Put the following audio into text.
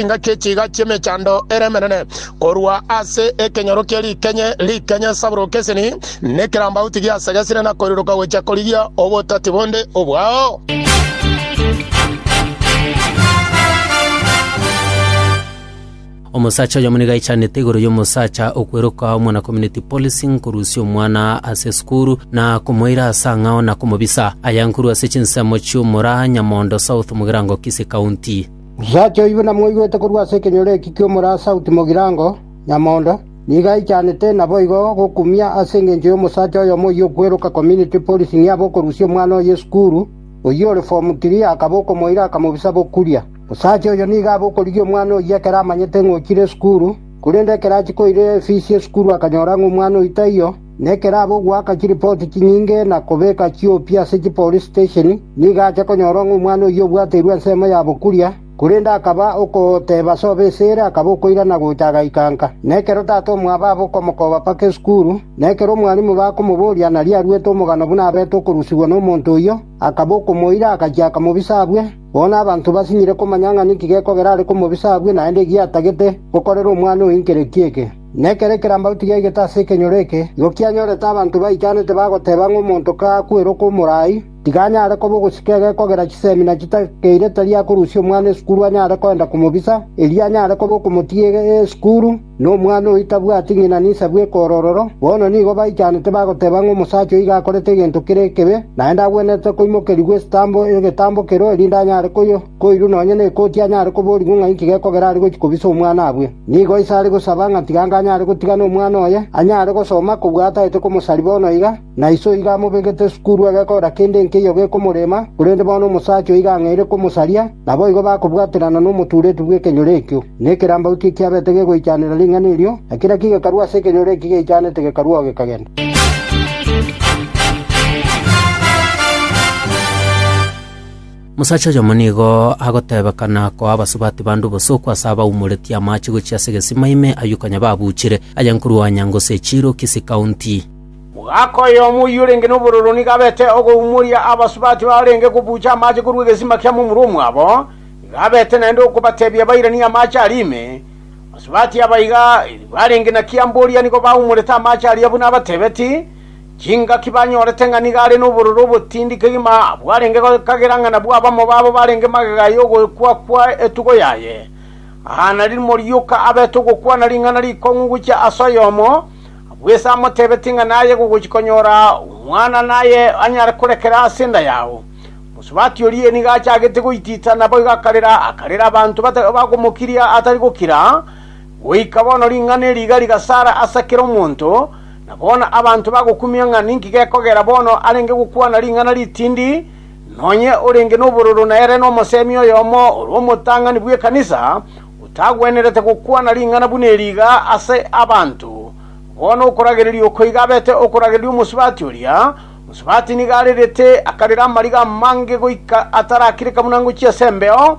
Chinka chi'echiga chi'emechando ere emenene, korwa ase ekenyoro kie rikenye rikenye saburo keseni, na ekerambauti giasegesire na koiriroka gochia korigia obotati bonde obwao. Omosacha oyomo nigo aichanete igoro y'omosacha okweroka omwana community policing korusia omwana ase esukuru na komoira ase ang'ao na komobisa. Aya nkorwa ase chinsemo chi'omura Nyamondo South mogerango Kisii County. Nsacha oibe namoigwete korwa ase ekenyoro eki ki'omorasa o Timogirango, nyamondo, nigo aichanete naboigo gokumia ase engencho y'omosacha oyomo oyio okweroka Community Policing abe okorusia omwana oye esukuru, oyio ore Form Three, akaba okomoira akamobisa bokuria. Osacha oyo nigo abe okorigia omwana oyio ekero amanyete ng'a ochire esukuru, korende ekero achia koira efisi y'esukuru akanyora ng'a omwana oyio taiyo, Nekeraba ogoaka chiripoti chinyinge na kobeka chiopi ase chipolice station, nigo ache konyora ng'a omwana oyio obwateirwe ensemo ya bokuria, korende akaba okoteba ase obe ise ere akaba okoirana gocha agaikanka. Na ekero tata omwabo aba okomokoba mpaka esukuru, na ekero omwalimu bakomoboria nario aruete omogano buna abete okorusigwa nomonto oyio, akaba okomoira agachia akamobisa abwe. Bono abanto basinyire komanya ng'a ninki gekogera are komobisa abwe naende egiatagete gokorera omwana oyo nkereki eke. Nekere kerambau tigaigete ase ekenyoro eke, igo kianyorete abanto baitanete bagoteba ng'a omonto kakwera okomorai, tiga anyare koba ogosika egekogera chisemi na chitakeire tari akorusia omwana esukuru anyare kogenda komobisa, erio anyare koba okomotiga esukuru, na omwana oyio tabwati ng'ina ninsa bw'ekorororo. Bono nigo baichanete bagoteba ng'a omosacha oyio iga akorete egento kere ekebe, naende agwenerete koimokerigwa egetambo kerwe erinde anyare koywa. Koirwa nonya nekoti anyare koborigwa ng'a inki gekogera are gochia kobisa omwana abwe. Nigo ise are gosaba ng'a tiga anga anyare gotigana omwana oye, anyare gosoma kobua ataete komosari bono iga, na ise oiga amobegete sukuru egekora kende nkeiyo gekomorema, korende bono omosacha oiga ang'eire komosaria, naboigo bakobwaterana nomotuureti bw'ekenyoro ekio. Na ekerambau ki ekiabete gegoichanera ring'ana erio, na kera ki gekarua ase ekenyoro eki geichanete gekaruao gekagenda. Omosacha oyomo nigo agotebekana koa abasubati bande obosoku ase abaumoretie amache gochia ase egesima ime ayio konya babuchire, aye nkorwa Onyango ase echiiro Kisii County. Omogaka oyomo oyio orenge nobororo nigo abete ogoumoria abasubati barenge kobucha amache korwa egesima kia momura omwabo, nigo abete naende okobatebia bairanie amache aria ime. Abasubati abaiga, barenge na Kiamboria nigo baumorete amache aria buna abatebeti, Chingaki banyorete ng'a nigo are nobororo obotindi kegima bwarenge kagera ng'a nabwo abamo babo barenge magega y'ogokwakwa etugo yaye. Aa narimo rioka abete ogokwana ring'ana rikong'u gochia ase oyomo bw'ise amotebetie ng'a naye gogochia konyora omwana naye anyare korekera ase enda yao. Mosubati oria nigo achagete goitita naboigo akarera, akarera abanto bagomokiria atari gokira, Goika bono ring'ana eri iga rigasara ase kera omonto, na bono abanto bagokumia ng'a ninki gekogera bono arenge gokwana ring'ana ritindi, nonye orenge nobororo nere nomosemi oyomo ore omotang'ani bw'ekanisa, otagwenerete gokwana ring'ana buna eri iga ase abanto. Bono okoragereria oko iga abete okoragereria omosubati oria, mosubati nigo arerete akarera amariga amange goika atarakireka buna ngochia ase embeo,